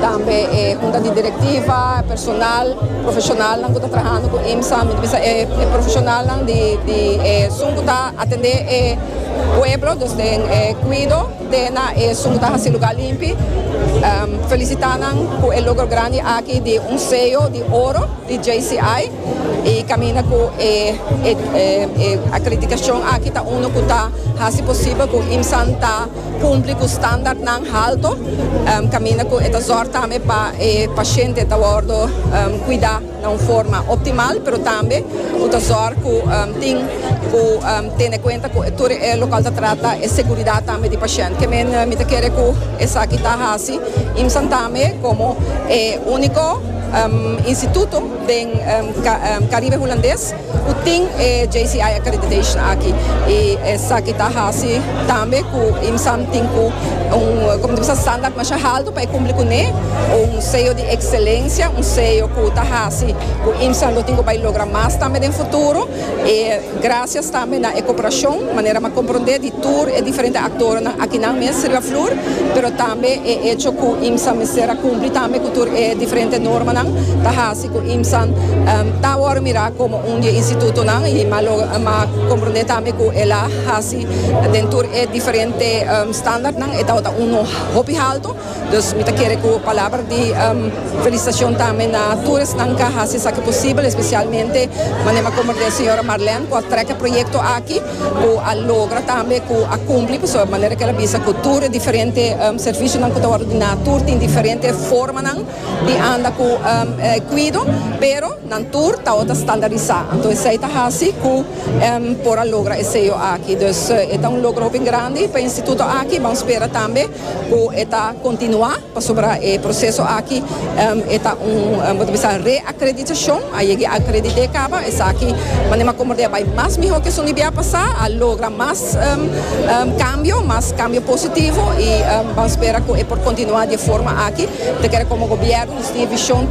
Tambe e hunta di direktiva, e personal, profeshonalnan ku ta trahando ku IMSA, mi ta bisa e profeshonalnan di di esun ku ta atendé e pueblo, dus den e kuido te na esun ku ta hasi lugá limpi, felisitá nan ku e logro grandi aki di un seyo di oro di JCI i kaminda ku e e akreditashon aki ta unu ku ta hasi posibel ku IMSAn ta. Cumpli cu standardnan halto, caminda cu e ta zorg tambe pa e paciente ta wordo cuida na un forma optimal, pero tambe cu ta zorg cu tin cu tene cuenta cu tur e local ta trata e seguridad tambe di paciente. Kende mi ta kere cu esaki ta haci IMSAN tambe como e unico instituto den Caribe Hulandes. Ku tin e JCI accreditation aki y esaki ta hasi tambe ku IMSAM tin ku un como di bisa standard masha halto pa e kumpli kuné, un sello di excelencia, un sello ku ta hasi ku IMSAM lo tin ku bai logra mas tambe den futuro y gracias tambe na e cooperacion manera m'a comprende di tur e diferente actorenan akinan mes riba flur pero tambe e hecho ku IMSAM mester a kumpli tambe ku tur e diferente normanan ta hasi ku IMSAN ta awor mirá komo un di e institutonan i m'a lo m'a komprondé tambe ku el a hasi den tur e diferente standartnan e tabata uno hopi haltu dus mi ta kere ku palabra di felisitashon tambe na tur esnan ku a hasi esaki posibel espesialmente manera m'a komprondé señora Marlène ku a trèk e proyekto aki ku a logra tambe ku a kumpli pasobra manera ku el a bisa ku tur e diferente servisionan ku ta wordu diná tur tin diferente formanan. di anda ku kuido, pero nan tur tabata ta standarisá. Anto esei ta hasi ku por a logra e seyo aki. Dus e ta un logro hopi grandi pa e instituto aki. Ban spera tambe ku e ta kontinuá pasobra e proseso aki e ta un bo ta bisa reakreditashon. A yega a akredit'é kaba. Esaki manera komo bai mas mihó ke esun di bia pasá, a logra mas. Cambio, mas cambio positivo y ban spera cu e por continua di e forma aki. Te kere como gobierno nos tin e vision.